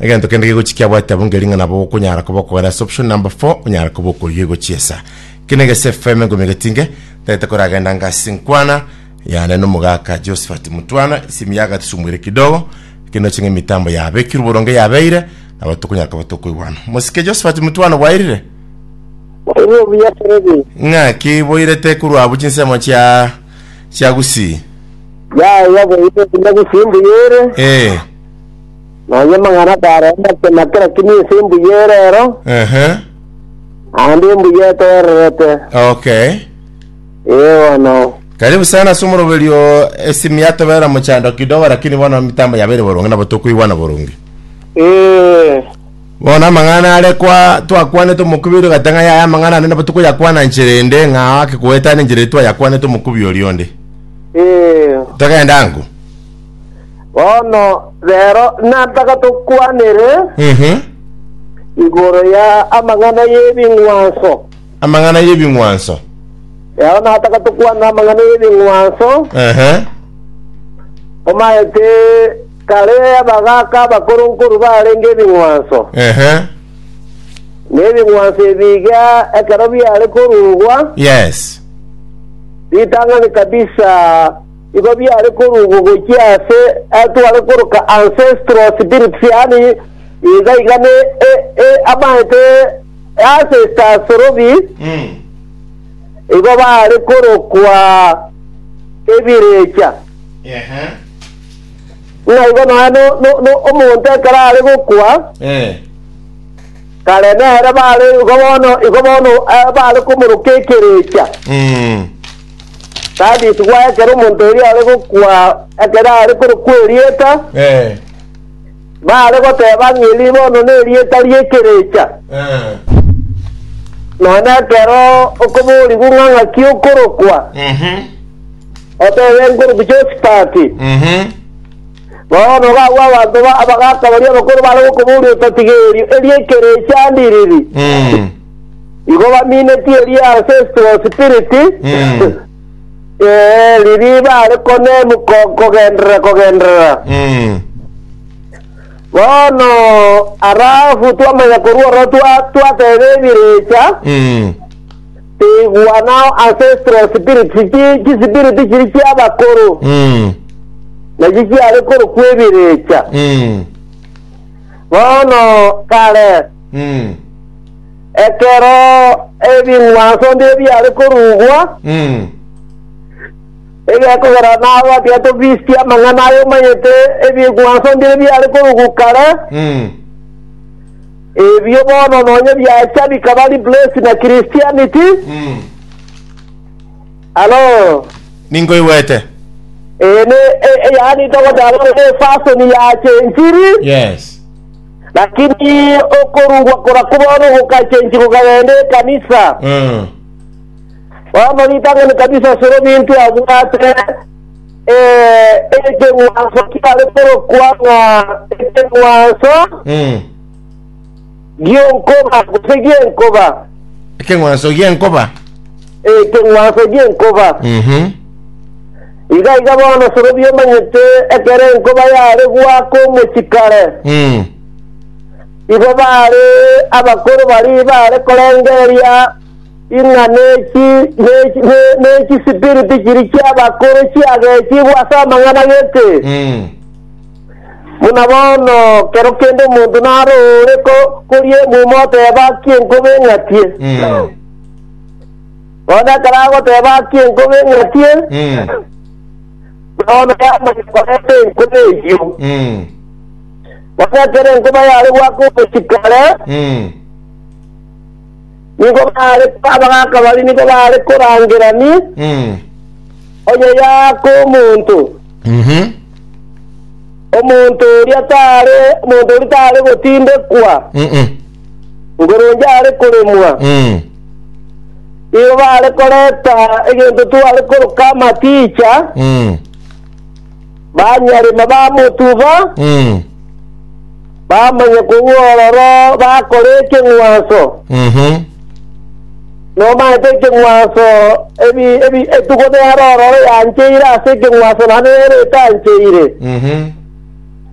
egento kende gegochi kiabwate abwo ngeri ng'a nabo okonyara koba okogera ase option number 4 onyara koba okoyia egochi esa kene gese fm engomi egetinge tagete koragenda ngasi nkwana yane nomogaka josephat mutwana esimi yagatusumuire kidogo kende oching'a emitambo yabekirwe boronge yabeire nabo tokonyara koba tokoigwana mosike josephat mutwana bwairire Orio buya Freddy. ng'a kiboirete korwa abwo chinsemo chia chia gusii Ya ya boite kunya gusimbu yere. eh Nonya amang'ana akarenta ase na kera kemiesi embuya ere ero, Ehe. naende embuya etoorerete. Okay. Ee bono. Karibu sana ase omoroberio esimi yatobera mochando kidogo lakini bono mitambo yabeire boronge nabo tokoigwana boronge. Ee. Bono amang'ana are kwa twakwanete omokubiri ogate ng'a yaya amang'ana ande nabo tokoyakwana nchera ende ng'a ake koetana enchera eye twayakwanete omokubi oria onde. Ee. Togende ango. Bono rero nataka tokwanere Mhm. igoro ya amang'ana y'ebing'wanso. Amang'ana y'ebing'wanso. Rero nataka tokwanere amang'ana y'ebing'wanso, Ehe. omaete kare abagaka abakoro nkoru barenge ebing'wanso. Ehe. Na ebing'wanso ebiga ekero biare korugwa, Yes. ritang'ani kabisa Igo biare koruugwa gochia aase atware koroka ancestral spirits, yaani iga iga ne amaete e ancestors robi, igo baare korokwa ebirecha. Ng'a igo nonya no, no, no, omonto ekero are gokwa, kare nere baare igo bono, igo bono eh, baare komoroka ekerecha. Tabitigwa ekero omonto oria are gokwa, ekero are korokwa erieta, Eh, baare goteba ng'a eri bono nerieta ri'ekerecha. eh, Nonya ekero okoborigwa ng'a ng'aki okorokwa, mhm, otebe nkorokwa Josipati. mhm. Bono gabwo abanto ba- abagaka baria abakoro bare gokoboria ototigerio, eri ekerecha ndiriri? Mm. Igo baminetie eria ase esuo spiriti, Mm. ee, riria bare konemu ko- kogenderera kogenderera. Mm. Bono arafu twamanya korwa oro twa- twateba ebirecha, Mm. tigwa nao ase esuo spiriti, chi- chisipiriti chiri chi'abakoro, Mm. nachi chiare korokwa ebirecha. Mm. Bono kare Mm. Ekero ebing'wanso mbio biare korugwa, Mm. egekogera nabatia tobisitie amang'ana aye omanyete ebing'wanso mbire biare korugwa kare, Mm. ebio bono nonye biacha bikaba replace na Christianity. Mm. Alo. Ninkoigwete. Eh, ne, eh, eh, yani togoteba ne fashion ya chenjiri. Yes. Lakini okorugwa korakwo bono gokachenchi gokagenda ekanisa. Mm. Bono ritang'ani kabisa asore ominto abwate eh, ekeng'wanso kiare korokwa ng'a ekeng'wanso Mm. gionkoba gose gienkoba Ekeng'wanso gi'enkoba. ekeng'wanso gienkoba Mhm. Iga iga bono sorobia omanyete ekero enkoba yare goaka omochie kare, igo baare abakoro baria baare korengereria ing'a ne chisipiriti chiria chi'abakoro chiagechigwe ase amang'ana gete. Buna bono kero kende omonto naro ore koria emuma oteeba, Aki enkoba eng'atie! Bono ekero agoteba akie enkobe ng'atie, Mm. bono yamanya korenta enkobe eyio. Mm. Bono ekero enkobe yare goaka omochiko ore, Mm. nigo bare abagaka baria nigo bare korangerani Mm. onye yaaka omonto. Mhm. Omonto oria tare omonto oria tare gotindekwa, Mm-mm. ngoronge are koremwa. Mm. Nigo bare koreta egento tware koroka amaticha, Mm. banyarema bamotuba, Mm. bamanya korwa ororo bakora ekeng'wanso. Mhm. Nomaete ekeng'wanso ebi ebi etuko nero ororo yancheire ase ekeng'wanso naende nero etancheire. Mhm.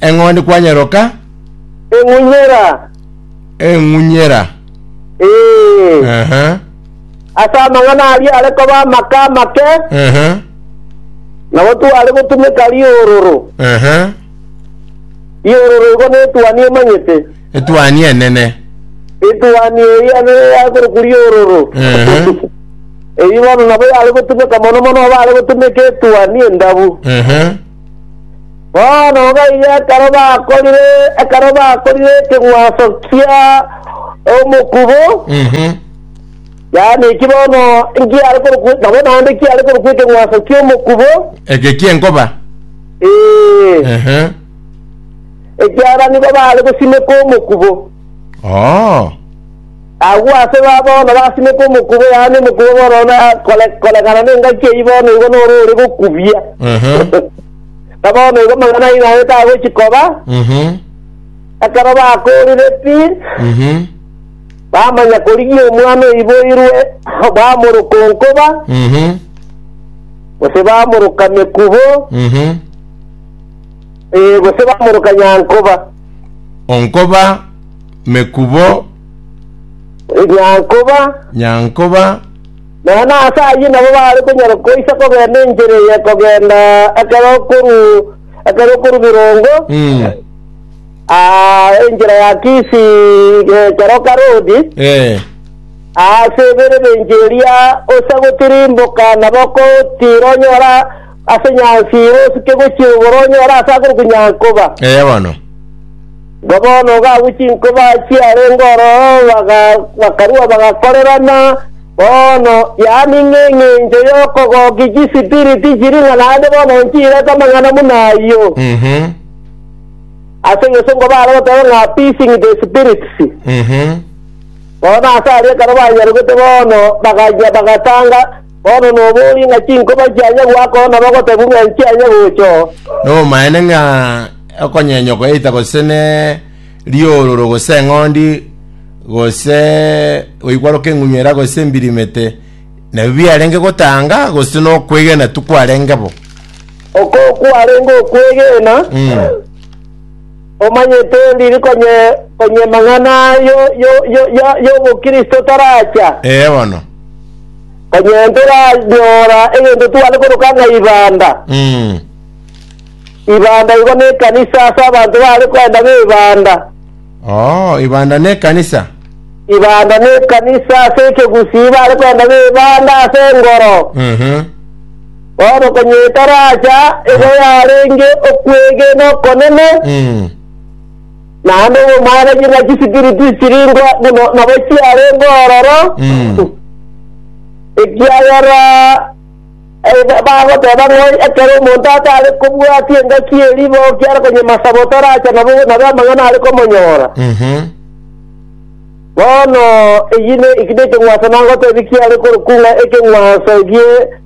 eng'ondi kwanyeroka eng'unyera eng'unyera ee Ehe, ase amang'ana aria are koba amaka amake ehe, nabo tware gotumeka riororo ehe. riororo igo netuani emanyete etuani enene etuani eria nere yakorokwa riororo Ehe, eyi bono nabo yare gotumeka mono mono abare gotumeka etuani endabu ehe, Bono gaiga ekero bakorire ekero bakorire ekeng'wanso kia omokubo, Mhm. yaani eki bono nkiare korokwa nabo naende kiare korokwa ekeng'wanso kia omokubo, eke kienkoba ee, Ehe. ekiara nigo bare gosimeka omokubo. Oo. Agwo ase baba bono basimeke omokuba, yaani omokuba bono na kore- koregana n'engaki eyio bono igo noro ore gokubia. Ehe. Na bono igo amang'ana ayio naye tagochi koba, Mhm. ekero bakoorire pi, Mhm. bamanya korigia omwana oiboirwe, bamoroka onkoba, Mhm. gose bamoroka mekubo, Mhm. eh, gose bamoroka nyankoba. Onkoba Mekubo, Nyankoba, Nyankoba, nonya nase ayio nabo baare konyara koisa kogenda enchera eye kogenda ekero okoru ekero okoru birongo mm, aa, enchera ya Kisi eh, Keroka Road eh, ase eberebenche eria ose gotirimboka nabo okotira onyora ase nyansi ire osike gochia igoro onyora ase akorokwa Nyankoba. eh, bono. Bwa bono gabwo chinkoba chiarenge ororo bakarua bagakorerana. Bono yaani ng'engencho y'okogokia chisipiriti chiri ng'a naende bono nchirete amang'ana buna ayio. Ase egesongo baare goteba ng'a appeasing the spirits. Bono ase aria ekero banyarogete bono, bagachia bagatanga Bono noborie ng'a chinkoba chiaye gwakoa na bagotebu ng'a inche aye gocha oo. Nobomaene ng'a okonyenyokwa eita gose ne riororo gose eng'ondi gose goikwaroka eng'unyera gose embirimete nabio biarenge gotanga gose nokwegena tikwarenge bo. Okoo kwarenge okwegena. Mm. Omanyete ndiri konyia mang'ana ayio y'obokristo taracha? Ee bono. Konyia ntoranyora egento tware koroka ng'a ibanda. Ibanda igo nekanisa ase abanto baare koenda ng'a ibanda. Oo, ibanda nekanisa? Ibanda nekanisa ase ekegusii baare koenda ng'a ibanda ase engoro. Bono konya etaracha eye yarenge okwegena okonene, naende obomanyeku na chisipiriti chirenge buna nabo chiarenge ororo, ekiagera eh, bagoteba ng'a ekero omonto atare kobwatia engaki ye riboki are konyema saba otaracha nabo nabe amang'ana are komonyora. Bono eyio ne ekio nekeng'wanso nagotebia kiare korokwa ng'a ekeng'wanso egie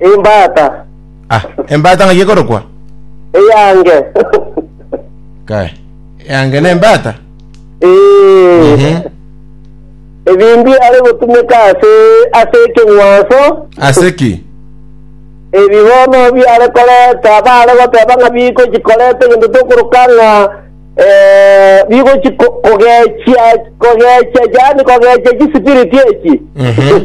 Imbata Ah, embata ng'ai ekorokwa? eyange. Kae. Yange ne embata? Ee. Mhm. Ebindi are gotumeka ase ase ekeng'wanso Ase ki? ebi bono biare koreta bare goteba ng'a bigochi koreta egento tokoroka ng'a eh, bigochi ko- kogechia kogechia yaani kogechia chisipiriti echi Mhm.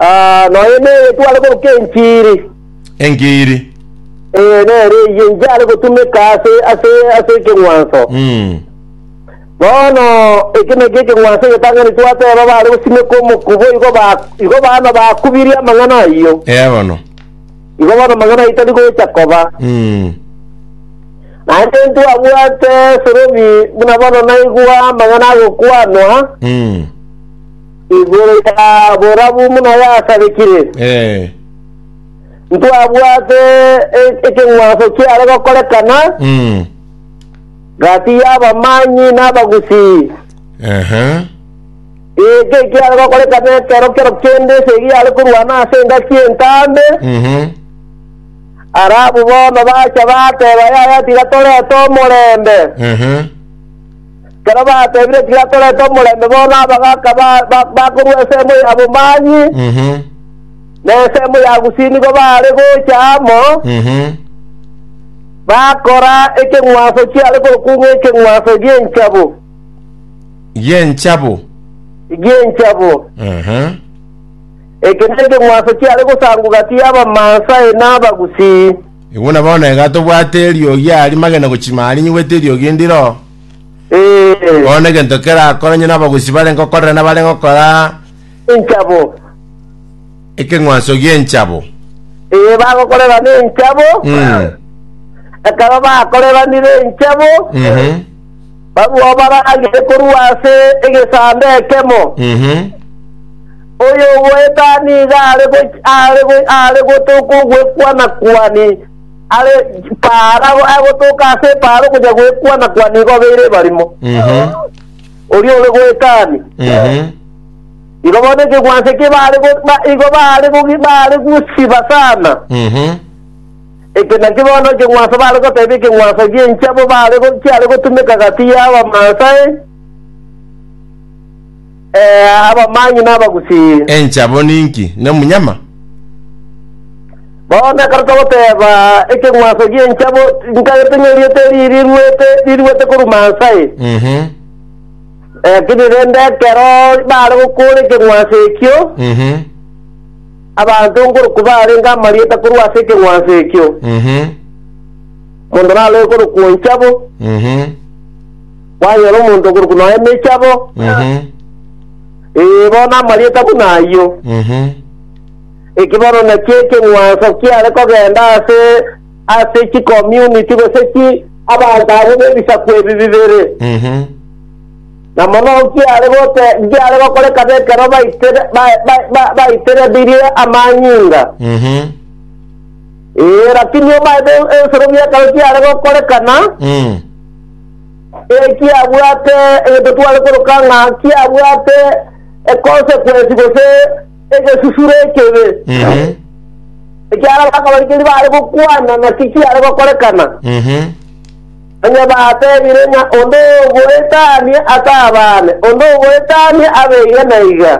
Ah, noyo neye tware koruka enchiri. Engiiri. Eh, nere eyio inchare gotumeka ase ase ase ekeng'wanso. Mm. Bono eke naki ekeng'wanso egetang'ani twateba bare gosimeka omokubo igo ba igo bana bakubirie amang'ana ayio. Ea bono. Igo bono amang'ana ayio tari gocha koba. Mm. Naende ntwabwate esorobi buna bono naigwa amang'ana agokwanwa Mm. Igoro ya borabu buna yasabekire, Eh. ntwabwate e- ekeng'wanso kiare gokorekana Mm. gati y'abamanyi n'abagusii. Aha. Eke kiare gokorekana ekero kero kende esegi yare korwana ase engaki entambe, Mhm. arabu bono bacha bateba yaya tiga torete omorembe. Aha. Ekero bateebire tiga torete omorembe bono abagaaka ba- ba- bakorua ensemo ya bomanyi Mhm. na ensemo ya gusii nigo baare gocha amo, Mhm. bakora ekeng'wanso kiare korokwa ng'a ekeng'wanso gi'enchabo, Gi'enchabo. gi'enchabo. Aha. Eke nekeng'wanso kiare gosangwa gati y'Abamansae na Abagusii. Igo na bono iga tobwate eriogi aria magena gochia ime aria nyigwete eriogi ndiro, Ee, bono egento kerakore onye n'abagusi barenge gokorera nabarenge gokora enchabo. ekeng'wanso gi'enchabo. Ee, bagokorera nenchabo, Mm. ekero bakoreranire enchabo, Mhm. Barwao baragere korwa ase egesaanda ekemo. Ehe. Oyogoeta nigo are go- are go- are gotoka ogwekwana kwani are paara agotoka ase epaara okonya gwekwana kwani igo obeire ebarimo Ehe. oria ore goetani Ehe. igo bono ekegwanso eke bare go- ba- igo bare gogi- bare gosiba sana Ehe. Eke nakio bono ekeng'wanso bare goteba ekeng'wanso gi'enchabo bare go- chiare gotumeka gati y'Abamaasai, ee, abamanyi na Abagusii. Enchabo ninki? Nomunyama? Bono ekero togoteba ekeng'wanso gi'enchabo, ntagete ng'a erieta eri riruete, riruete korwa Maasai. Mhm. Lakini rende ekero bare gokora ekeng'wanso ekio, Mhm. Abanto nkorokwa baarenge amarieta korwa ase ekeng'wanso ekio, omonto naroe korokwa Onchabo, kwanyora omonto okorokwa nonya Emechabo, ee, bono amarieta buna ayio, eki bono nakio ekeng'wanso kiare kogenda ase ase chikomyuniti gose chi abanto abwo b'ebisaku ebi bibere. Na mono nkiare gote, nkiare gokoreka b'ekero baitere, ba, ba, ba, baiterebirie amanyinga. Mhm. Ee, lakini omaete ebisoro bi'ekero kiare gokorekana, Mm. ee, kiabwate egento tware koroka ng'a kiabwate econsequence gose egesusuro ekebe. Mhm. Ekiara bakabarikeri bare gokwana naki kiare gokorekana. Mhm. Onye batebire ng'a onde ogoetania atabane, onde ogoetania abe iga na iga.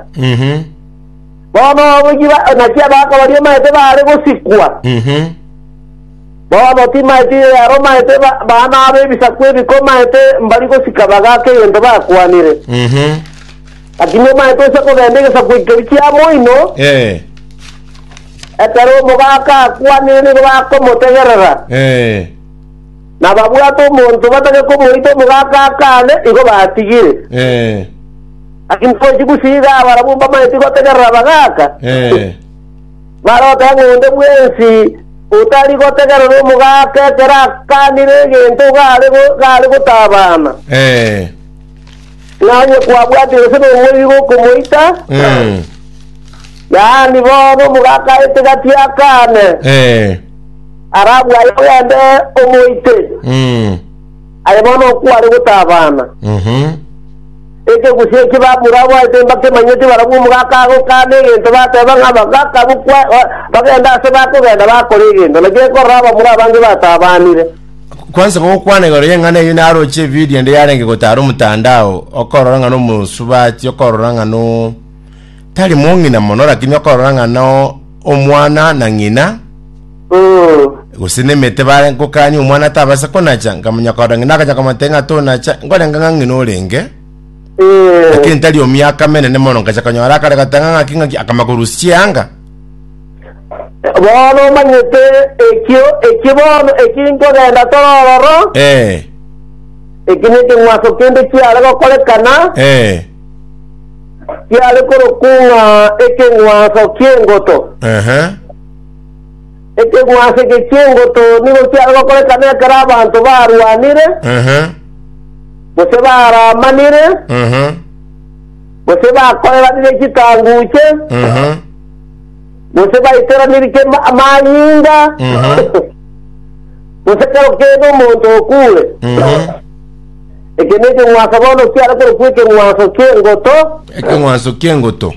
Bono oboichi ba- naki abaka baria maete baare gosikwa. Bono timaeti yaromaete ba- baana abo ebisaku ebikomaete mbari gosika bagaaka egento bakwanire. Lakini omaete ose kobenda egesaku ekeri kia moino, Eh, ekero omogaaka akwanire nigo bakomotegerera. eh. Nababwate omonto batake komoita omogaka akaane, igo batigire. Eh. Naki ntochi gosiiga abarabwo mbamaeti gotegerera abagaka, Eh. barote ng'a onde bwensi otari gotegerera omogaka ekero akanire egento gare go- gare gotabana. Eh. Ng'a onye kwabwate gose nomoriri gokomoita, Mm. yaani bono omogaka aete gati akane, Eh. arabwo aye ogende omoite, Mm. aye bono okware gotabana. Mhm. Ekegusii eki bamura abaete mbakemanyeti barabwo omogaka agokana egento bateba ng'a abagaka bokwa- ba- bagende ase bakogenda bakora egento, naki ekorora abamura abange batabanire. Kwansa gokwana igoro y'eng'ana eyio naroche ebidio ende yarenge gotara omotandao, okorora ng'a nomosubati, okorora ng'a no tari mong'ina mono, lakini okorora ng'a no omwana na ng'ina gose nemete bare gokania omwana atabasa konacha nkamanya korora ng'ina akanya komotebia ng'a tonacha nkorenga ng'a ng'ina orenge lakini tari omiaka menene mono nkacha konyora akare goteba ng'a ng'aki ng'aki akama korusia chianga Bono omanyete ekio eki bono eki nkogenda tore ororo, Eh, eki nekeng'wanso kende kiare gokorekana, eh, kiare korokwa ng'a ekeng'wanso ki'engoto. aha, Ekeng'wanso eke ki'engoto nigo kiare gokorekana ekero abanto barwanire, aha, gose baramanire, aha, gose bakoreranire chitanguche, aha, gose baitoranirike ma- amanyinga Mhm. gose kero kende omonto okure Mhm. eke nekeng'wanso bono kiare korokwa ekeng'wanso ki'engoto ekeng'wanso ki'engoto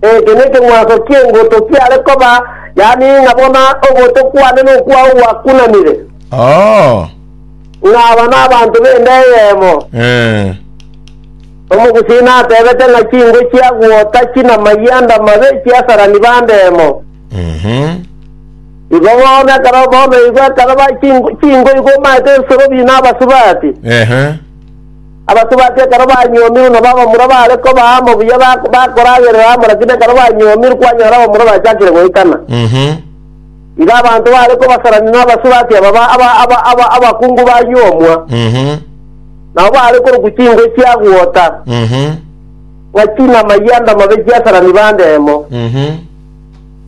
eke nekeng'wanso ki'engoto kiare koba yaani ng'a bono ogoto kwane nokwao gwakunanire Oh. ng'aba n'abanto b'enda eyemo Eh. Omogusii natebete ng'a chingo chia gwota chin'amaiyo and'amabe chiasarani bande emo. Igo bono ekero bono igo ekero ba chingo chingo igo omaete esorobio na abasubati. Ehe. Abasubati ekero banyuomirwe nabo abamura baare kobaa amo buya bak- bakoragerera amo lakini ekero banyuomirwe kwanyora abamura bachakire goitana. Mhm. Igo abanto baare kobasarani na abasubati aba ba- aba- aba- aba- abakungu banyuomwa. Mhm. Nao baare korokwa chingwe chia gwota, Mhm. ng'a chinama yianda mabe chiasarani bande emo. Mhm.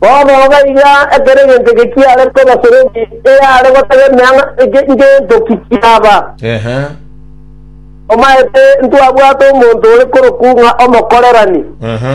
Bono iga iga ekero egento eke kiare koba soroki eyare gotegemea ng'a eke ngento ki kiaba. Ehe. Omaete ntwabwate omonto ore korokwa ng'a omokorerani. Aha.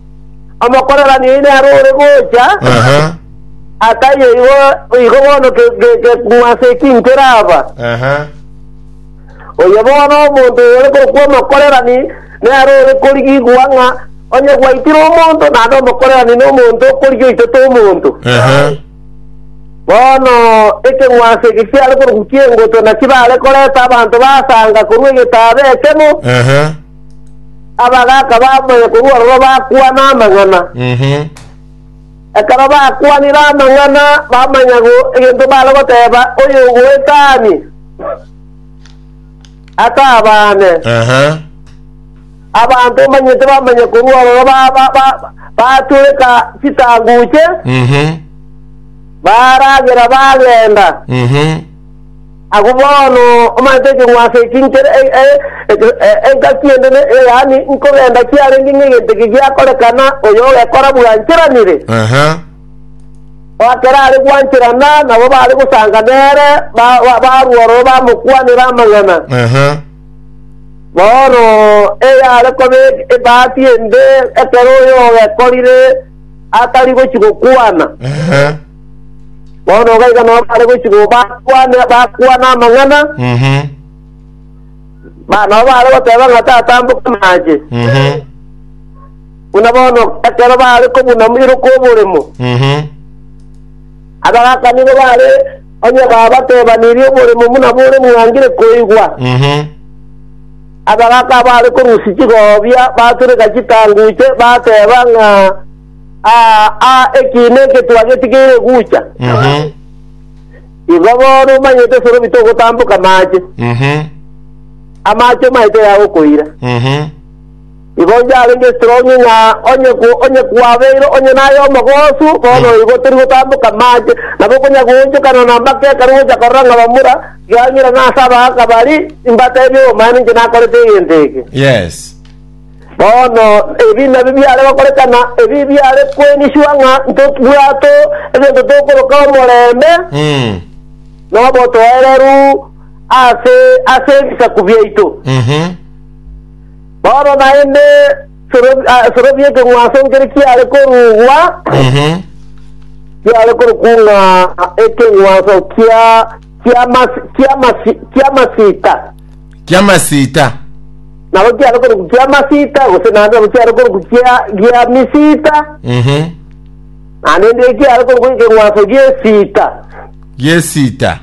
omokorerania oyi nere ore gocha, Aha. akaye igo igo bono ke- ke- ke- ng'wanso eki nkeraba. Aha. Oyo bono omonto oyo ore korokwa omokorerani nere ore korigigwa ng'a onye gwaitire omonto naende omokorerani na omonto okorigia oitete omonto Aha. bono ekeng'wanso eke kiare korokwa kiengoto naki bare koreta abanto basanga korwa egetaaba ekemo Aha. Abagaaka bamoyo korwa ororo bakwana amang'ana. Ehe. Ekero bakwanire amang'ana bamanya go egento bare goteeba oyogoeta aanie atabaane. Aha. Abanto mbanyete bamanya korwa ororo ba- ba- ba- batureka chitanguche Mhm. baragera bagenda. Mhm. Agwo bono omanche ekerwa ase eki nkere engaki ende, yaani nkogenda kiarenge ng'egento eke giakorekana, oyo ogekora bwancheranire, oakera are gwancherana, nabo baare gosanga nere barwa ororo bamokwanera amang'ana. Bono eyare koba ebahati ende ekero oyo ogekorire atari gochi gokwana. Bono iga iga nabo bare gochi go bakwane bakwana amang'ana Mhm. ba nabo bare goteba ng'a tatamboka amache Mhm. buna bono ekero bare kobuna moiro kw'oboremo Mhm. abagakanire bare onye babatebanirie oboremo buna bore bwangire koigwa Mhm. abagaka bare korusia chigobia batureka chitanguche bateba ng'a Aa, aa, eki negetwa getigeire gucha. Mhm. Igo bono omanyete esorobi togotamboka maache, Mhm. amaache omaete yagokoira. Mhm. Igo onye arenge esitrongi ng'a onye ku- onye kwabeire onye naye omogosu, bono Mm. igo tori gotamboka maache, nabo okonya goonchokana na mbaka ekero gocha korora ng'a bamura, gang'ira ng'a ase abagaaka bari, mbatebie obomani inche nakorete egento eke. Yes. Bono ebi nabio biare gokorekana, ebi biare kweniswa ng'a ntobwate egento tokoroka omorembe na obotoereru ase ase ebisaku biaito. Bono naende Sorobi- ah, Sorobi ekeng'wanso nkere kiare korugwa, kiare korokwa ng'a ekeng'wanso kia kiamasi- kiamasi- kiamasita. ki'amasiita. Nabo kiare korokwa ki'amasiita, gose naende nabo kiare korokwa kia- gia misiita, Mhm. naende ndiye kiare korokwa ekeng'wanso gi'esiita, Gi'esiita.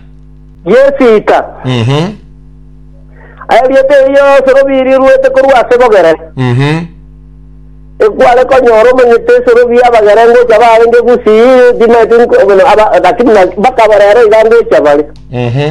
gi'esiita. Mhm. Erieta eri yonsi robi riruete korwa ase bogere, Mhm. ekware konyora omanyete esorobi y'abagere ngocha barenge gusii, timaeti nko- bono aba- lakini na- mpaka aba rero iga ngocha bare. Mhm.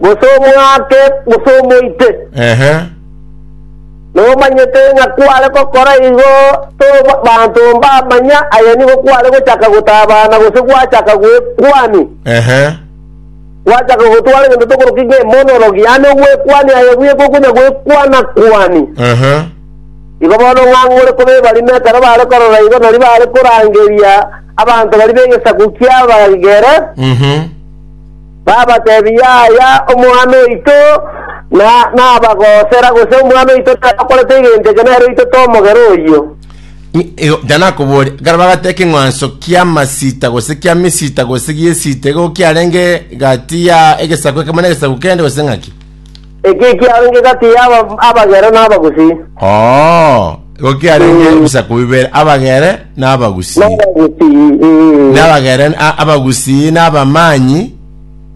gose omwake, gose omoite, Ehe. nomanyete ng'a kware gokora igo, tobanto mbamanya, aye nigo kware gochaka gotabana gose gwachaka gwekwani, Ehe. gwachaka gotwara egento tokoroki ng'a emonolog, yaani ogwekwani aye bweka okonya gwekwana kwani. Ehe. Igo bono ng'ang'ore koba ebarimo ekero bare korora igo nari bare korangeria abanto bari b'egesaku ki'abagere, Mhm. babateebie, Yaya omwana oito, na nabagoosera, gose omwana oito takorete egento eke, nere oito tomogera oyio. I- igo- Jana akoboria ekero bagateba ekeng'wanso kia masita gose kia misita gose giesita igo kiarenge gati ya egesaku ekemo na egesaku kende gose ng'aki Ekio ekiaro inki gati y'aba abagero na abagusii? Oo, igo kiarenge Mm. ebisaku bibere, abagere na abagusii. N'abagusii. mm. N'abagere, a- abagusii na abamanyi,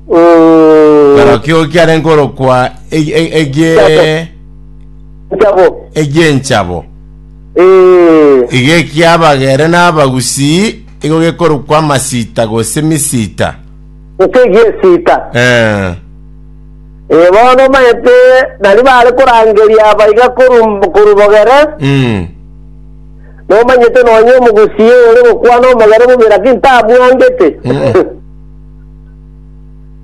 Mm. barokio igo kiarenge korokwa eg- eg- egie- Chabo. egienchabo. Eh. Igo ekiabagere na abagusii, igo gekorokwa amasita gose misita. Gose egiesita. Eh. Ee, bono omanyete naria baare korangeria aba iga koru- korwa bogere, Mm. nomanyete nonya omogusii ore gokwana omogere bobe, lakini tamwangete. Mm-mm.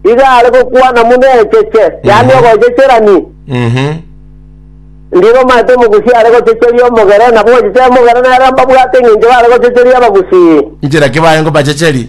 Iga are gokwana muna echeche, yaani Mhm. ogochecherani. Mhm. Ndire omanyete omogusii are gochecheria omogere, nabo ogochecheria omogere nere mbabwate eng'encho bare gochecheria abagusii. Inchera ki baye ngobachecheri?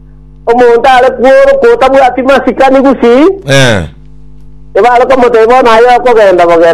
Omonto are kworoka otabwati masikani gusii, Eh. ebare komotebia bono aye okogenda bogere.